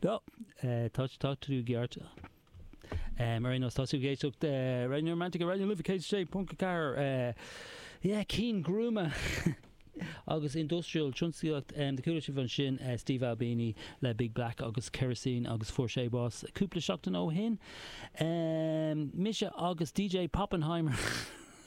Nó, tá sé, tá tú ceart. Ar aon nós, tá sibh ag éisteacht Raidió Neuromantek ar Raidió na Life 106.4. Yeah, ceann gruama agus industrial tionsclaíocht. A chuala sibh ansin, Steve Albini le Big Black agus Kerosene agus fuair sé bás cúpla seachtain ó shin. Mise agus DJ Poppenheimer.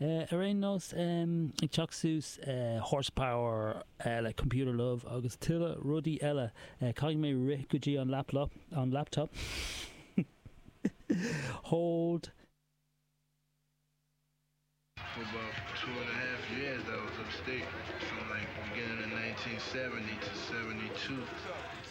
Ar aon nós, ag teacht suas, Horsepower le Computer Love agus tuilleadh rudaí eile, caithfidh mé rith go dtí an laplop, an laptop, hold. for about two and a half years I was upstate from like beginning in 1970 to 72.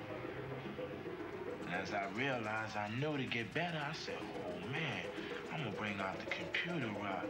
As I realize I know to get better I said oh man I'ma bring out the computer right.